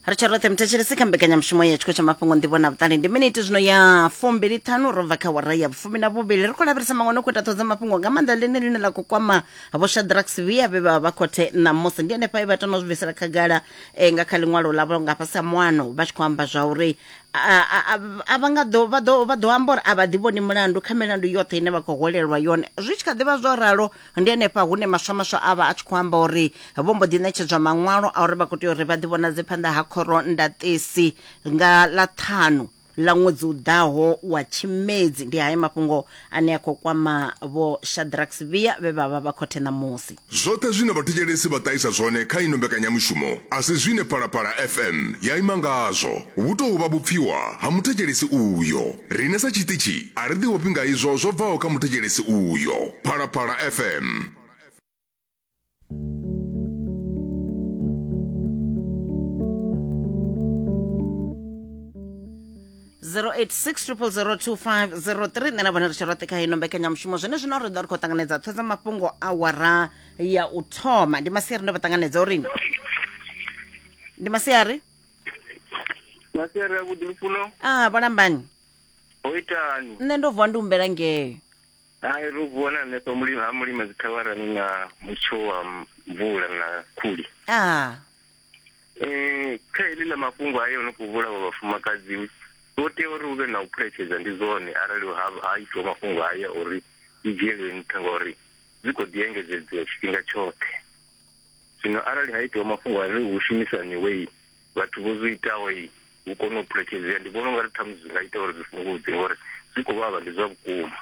ri tsha roṱhe muthetshelesi kha mbekanyamushumo ya tshiko tsha mafhungo nḓivho na vhuṱali ndi miniti zwino ya fumbili ṱhanu ro bva kha wara ya vhufumi na vhuvhili ri khou lavhelesa maṅwe no khou ita ṱhodza mafhungo nga maanḓa ḽine ḽine ḽa khou kwama vho shadrax via vhe vha vha khothe ṋamusi ndi henefha e vha tama u zwi bvisela khagala eh, nga kha ḽiṅwalo ḽavho nga fhasi ha muano vha tshi khou amba zwa uri a- a- a- a vha nga ḓo vha ḓo vha ḓo amba uri a vha ḓivhoni mulandu kha milandu yoṱhe ine vha khou holelwa yone zwi tshi kha ḓivha zwo ralo ndi henefha hune maswamaswa a vha a tshi khou amba uri vho mbo ḓi ṋetshedzwa maṅwalo a uri vha khou tea uri vha ḓivhonadze phanḓa ha khoro ndaṱesi nga ḽa ṱhanu ḽa ṅwedzi u ḓaho wa tshimedzi ndi hayo mafhungo ane a khou kwama vho shadrax via vhe vha vha vha khothe ṋamusi Zwoṱhe zwine vhathetshelesi vha ṱahisa zwone kha ino mbekanyamushumo a si zwine Phalaphala FM ya ima ngazwo. Vhu tou vha vhupfiwa ha muthetshelesi uyo. Riṋe sa tshiṱitshi a ri ḓiofhi nga izwo zwo bvaho kha muthetshelesi uyo. Phalaphala FM. zero eight six triple zero two five zero three nṋe na vhone ri tshi roṱhe kha ino mbekanyamushumo zwone zwino ri ḓo ri khou ṱanganedza ṱho dza mafhungo awara ya u thoma ndi masiari ndo vha ṱanganedza uri ndi masiari masere avhuḓi lufuno ah vho lambani ho itani nṋe ndo vuwa ndi humbela ngeo hai ro vuwa na hanefha mulima ha mulima dzikhawarani na mutsho wa mvula na khuli ah um kha heḽi ḽa mafhungo a yo no khou vhulawa vhafumakadzi vho tea uri hu vhe na u phuletshedza ndi zwone arali ha ha itiwa mafhungo haya uri i dzhielwe nṱha ngauri dzi khou ḓi engedzedzea tshifhinga tshoṱhe Zwino arali ha itiwa mafhungo a ri hu shumisaniwei vhathu vho zwi itaho i hu kone u phulekedzea ndi vhona ungari ṱhamusi zwi nga ita uri zwi fhungudze ngori zwi khou vhavha ndi zwa vhukuma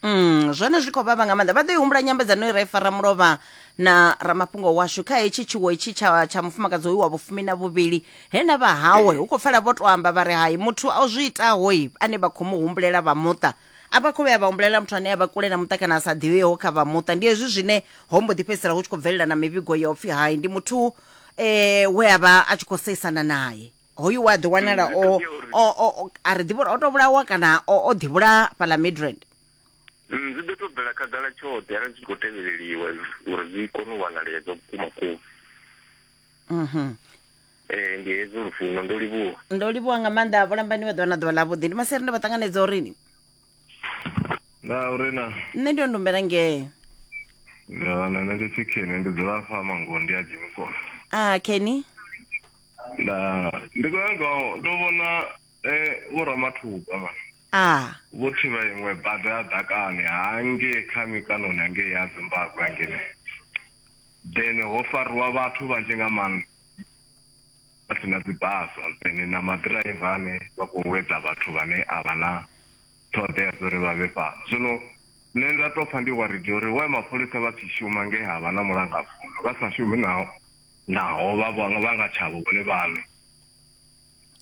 Mm, zwone zwi khou vhavha nga maanḓa vha ḓo i humbula nyambedzano i ra i fara mulovha na ramafhungo washu kha hetshi tshiwo itshi tsha tsha mufumakadzi hoyu wa vhufumi na vhuvhili he na vha hawe hu khou pfala vho to amba vha ri hai muthu a zwi itahoi ane vha khou mu humbulela vha muṱa a vha khou vhuya vha humbulela muthu ane a vha kule na muṱa kana a sa ḓivheho kha vha muṱa ndi hezwi zwine ho mbo ḓi fhedzisela hu tshi khou bvelela na mivhigo ya upfhi hai ndi muthu eh we a vha a tshi khou seisana naye hoyu wa ḓi wanala Mm, zwi o khakhea uri- o o- o- a ri ḓivhi uri o to vhulawa kana o o ḓi vhulaya fhala midrand Mm, zwi ḓo to bvela khagala tshoṱhe arali zwi tshi khou tevheleliwa uri zwi kone u wanalea zwa vhukuma kuma mhm ee ndi hezwo lufuno ndo livhuwa ndo livhuwa nga maanḓa vhulambani vha ḓuvha na ḓuvha ḽavhuḓi ndi maseri ndo vha ṱanganedza urini na uri na nṋe ndi ondumbela ngee na na ndi chicken ndi dzula fa mango ndi a dzimi kona a kenny na ndi khou nyanga u- ndo vhona eh vho ramathuba man a vho thivha iṅwe bada ya ḓakani hangei kha mikanoni hangei ya zimbabwe hangene then ho fariwa vhathu vhanzhi nga maanḓa vha si na dzi basa dzine na maḓiraiva ane vha khou wedza vhathu vhane a vha na ṱhoḓea dza uri vha vhe fhano zwino nṋe nda tou pfha ndi waridi uri wa mapholisa vha tshi shuma nge ha vha na mulangafuno vha sa shumi naho naho vha vha nga tshavho vhone vhaṋe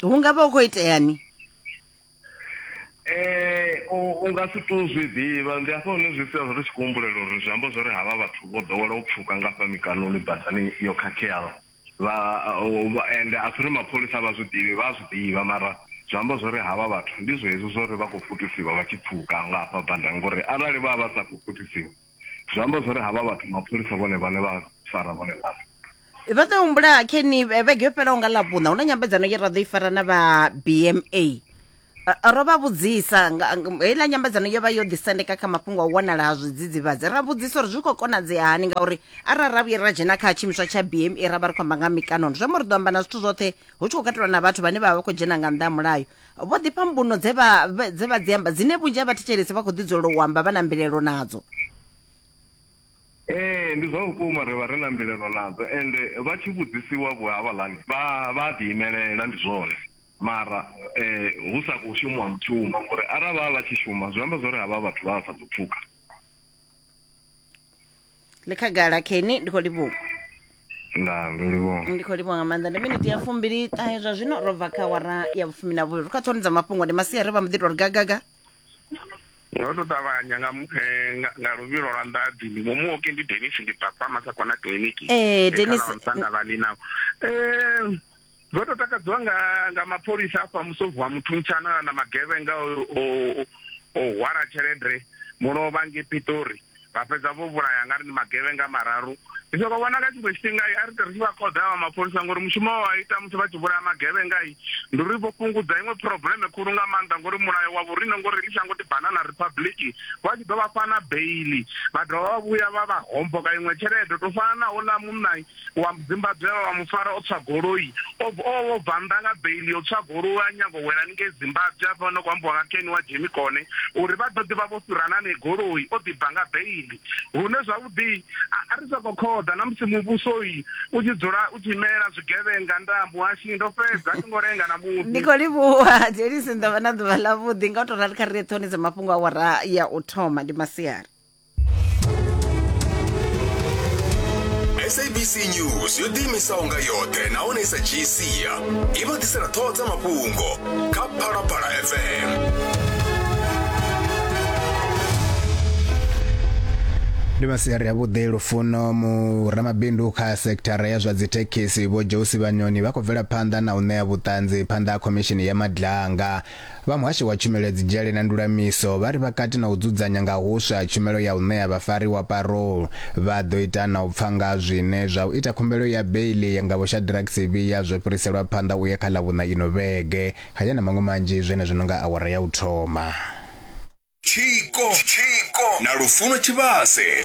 hu nga vha hu khou iteani Eh, u nga si tu zwi ḓivha ndi hafha hune zwi sia zwo ri tshi kuhumbulela uri zwi amba zwori havha vhathu vho ḓowela u pfuka nga fha mikanoni badani yo khakheaho vha ende a si uri mapholisa vha zwi ḓivhi vha zwi ḓivha mara zwi amba zwori havha vhathu ndi zwezwi zwori vha khou futusiwa vha tshi pfuka nga hafha badani ngori arali vha vha sa khou futusiwa zwi amba zwori havha vhathu mapholisa vhone vhane vha fara vhone vhane ro ḓo humbula keni eh, vhege yo fhelaho nga ḽavhuṋa hu na nyambedzano ye ra ḓo i fara na vha bma eh, ro vha vhudzisa heiḽa nyambedzano yo vha yo ḓisendeka kha mafhungo a u wanala ha zwidzidzivhadzi ra vhudzisa uri zwi khou konadzea hani ngauri arali ra vhuye ra dzhena kha tshiimiswa tsha bma ra vha ri khou amba nga mikanono zwi amba ri ḓo amba na zwithu zwoṱhe hu tshi khou katelwa na vhathu vhane vha vha vha khou dzhena nga nnḓa ha mulayo Vho ḓifha mbuno dze vha dze vha dzi amba dzine vhunzhi ha vhathetshelesi vha khou ḓidzulela u amba vha na mbilelo nadzo. Ee ndi zwa vhukuma ri vha ri na mbilelo nadzo ende vha tshi vhudzisiwa vho havhaḽani vha vha ḓi imelela ndi zwone mara um hu sa khou shumiwa mushumo ngori arali vha vha vha tshi shuma zwi amba zwori havha vhathu vha vha sa ḓo pfuka. ḽi khagala keni ndi khou livhuwa nda ndo livhuwa ndi khou livhuwa nga maanḓa ndi miniti ya fumbili ṱahe zwa zwino ro bva kha wara ya vhufumi na vhuvhili ri kha ṱhoni dza mafhungo ndi masiari vha mbo ḓi tou ri gagaga nga u tou ṱavhanya nga mu- eh, nga- nga luvhilo lwa nḓadzi ndi mumuoki ndi denis ndi papa masakona kiliniki Eh, Dennis- ndavhalina um ndo to takadziwa nga nga mapholisa afha musovu wa muthu mutshana na magevhenga o hwala tshelede muno vha nge pitori vha fhedza vho vhulaya nga ri ni magevhenga mararu ndi soko vhona nga tshiṅwe tshifhinga a ri ri tshi vha khoḓa vha mapholisa ngori mushumo wa ita musi vha tshi vhulaya magevhenga i ndi uri vho fhungudza iṅwe probleme khulu nga maanḓa ngori mulayo wa vhorine ngori ḽi shango ndi banana republic vha tshi ḓo vha fana beili vha dovha vha vhuya vha vha homboka iṅwe tshelede to fana na ola munna wa Zimbabwe vha mu fara o tswa goloi o o bva nnḓa nga bail yo tswa goloi a nyago wela ni ngei Zimbabwe a fana ku ambiwa nga Ken wa Jimmy Kone uri vha ḓo ḓivha vho fhirana ne goloi o ḓi bva nga bail hune zwavhuḓi a ri soko khoḓa na musi muvhuso yi u tshi dzula u tshi imela zwigevhenga ndambo hashi ndo fhedza a ngo renga na musi ndi kho livhuwa Jelisi ndavha na ḓuvha ḽa vhuḓi nga u to rali kha ri ṱhonise mafhungo a wara ya u thoma ndi masiari sabc news yo ḓiimisaho nga yoṱhe nahone i sa dzhii sia i vha ḓisela ṱhoho dza mafhungo kha phalaphala fm ndi masiari avhuḓi lufuno mu ramabindu kha sekithara ya zwa dzithekhisi vho josi vhanyoni vha khou bvela phanḓa na u ṋea vhuṱanzi phanḓa ha khomishini ya madlanga Vha Muhasho wa Tshumelo ya Dzidzhele na Ndulamiso vha ri vha kati na u dzudzanya nga huswa tshumelo ya u ṋea vhafariwa parole. Vha ḓo ita na u pfa nga zwine zwa u ita khumbelo ya beiḽi yanga Vho Shadrack Sibiya zwo fhiriselwa phanḓa u ya kha Ḽavhuṋa ino vhege. Haya na maṅwe manzhi zwenezwo no nga awara ya u thoma. Tshiko na Lufuno Tshivhase.